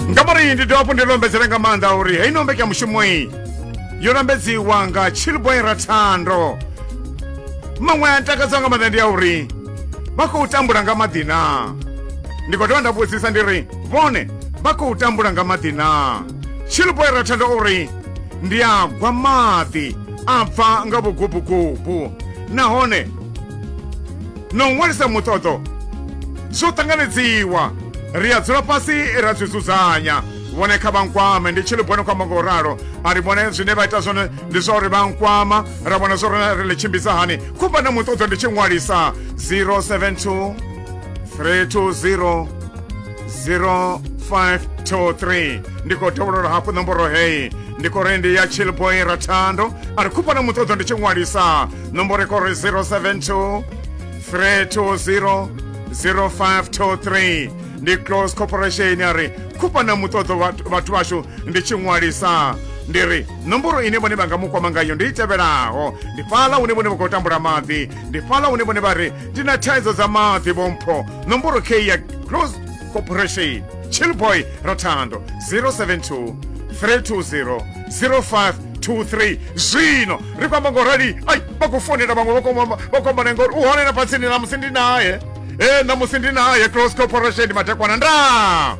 nga murahu ndi dovha hafhu ndi lombedzera nga maanḓa uri heyi no mbekanyamushumo iyi yo lambedziwa nga chilboy rathando maṅwe a ntakadza nga maanḓa ndi ya uri vha khou tambula nga maḓi na ndi khou dovha nda vhudzisa ndi ri vhone vha khou tambula nga maḓi na chilboy rathando o ri ndi a gwa maḓi a bva nga vhugubugubu nahone na u ṅwalisa muṱoḓo zwo ṱanganedziwa ri a dzula fhasi ra zwi dzudzanya vhone kha vha nkwame ndi tshi ḽi bone kwamba nga u ralo a ri vhone zwine vha ita zwone ndi zwa uri vha nkwama ra vhona zwo rona ri ḽi tshimbidza hani khumba na muṱoḓo ndi tshi ṅwalisa 072 320 0523 ndi khou dovholola hafhu ṋomboro heyi ndi khou ri ndi ya chillboy rathando a ri khumba na muṱoḓo ndi tshi ṅwalisa nomboro kori 072 320 0523 ndi close corporation a ri khupana muṱoḓo vhathu vhashu ndi tshi ṅwalisa ndi ri nomboro ine vhone vha nga mu kwama ngayo ndi i tevhelaho ndi fhaḽa hune vhone vha khou tambula maḓi ndi fhaḽa hune vhone vha ri ndi na thaidzo dza maḓi vhompho nomboro k ya close corporation chillboy rathando 072 320 05 2 3 zwino ri kwamba ngo rali ai vha khou fonela vhaṅwe vha kwamba vha kwamba na ngori u hone na fhatsini na musi ndi naye e na musi ndi naye close corporation madekwana nda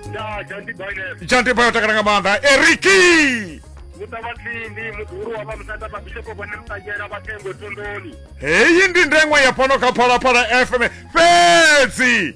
nda jandi bainef jante bayo takala nga maanḓa eriki muta vhatsindi muḓuru wa vha musanda vhabishopo vhone mutangela vhathengo thondoni heyi ndi ndengwa ya fhano kha phalaphala fm fhedzi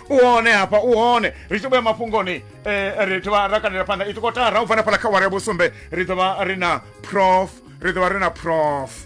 u hone hafha u hone ri tshi vhuya mafhungoni eh, ri ḓovha ra kandela phanḓa i tikotara u bva na fhala kha wara ya vhusumbe ri ḓovha ri na prof ri ḓovha ri na prof